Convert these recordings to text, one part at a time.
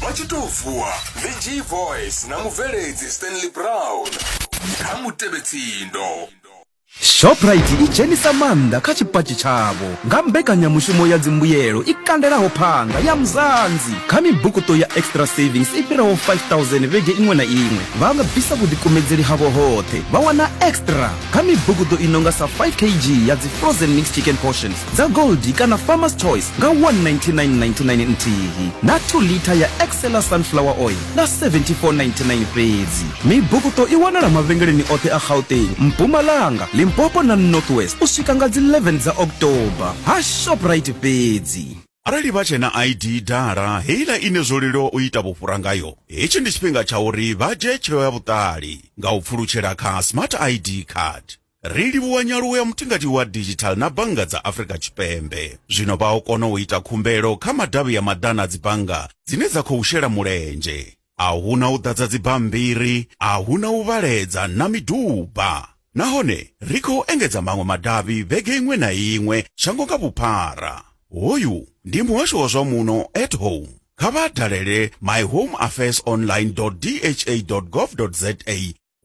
vha tshi tou vuwa ndi g voice na mubveledzi stanley brown kha mutevhetsindo shoprite i dzhenisa maanḓa kha tshipatshi tshavho nga mbekanyamushumo ya dzimbuyelo i kandelaho phanga ya mzanzi kha mibukuto ya extra savings i fhiraho 5000 vhege iṅwe na iṅwe vha nga bvisa vhuḓikumedzeli havho hoṱhe vha wana extra kha mibukuto i nonga sa 5 kg ya dzi frozen mix chicken portions dza Goldie kana Farmer's Choice nga 199.99 nthihi na 2 litha ya Excella Sunflower Oil nga 74.99 fhedzi. Mibukuṱo i wanala mavhengeleni oṱhe a Gauteng, Mpumalanga, Limpopo na North West u swika nga dzi 11 dza October ha Shoprite fhedzi. arali vha tshena id dala heiḽa ine zwo leluwa u ita vhufhura ngayo hetshi ndi tshifhinga tsha uri vha dzhie tsheo ya vhuṱali nga u pfulutshela kha smart id card ri livhuwa nyaluwo ya mutingati wa digital na bannga dza afrika tshipembe zwino vha o kona u ita khumbelo kha madavhi ya maḓana a dzibannga dzine dza khou shela mulenzhe a hu na u ḓadza dzibammbiri a hu na u vhaledza na miduba nahone ri khou engedza maṅwe madavhi vhege iṅwe na iṅwe shango nga vhuphara hoyu ndi muhasho wa zwa muno at home kha vha dalele myhomeaffairsonline dha gov za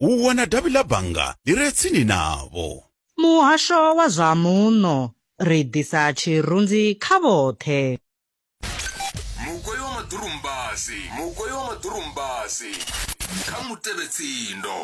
u wana davhi ḽa bannga ḽi re tsini navho. Muhasho wa zwa Muno, ri ḓisa tshirunzi kha vhoṱhe. Mugoi wa maḓurumbasi, mugoi wa maḓurumbasi. Kha mutevhetsindo.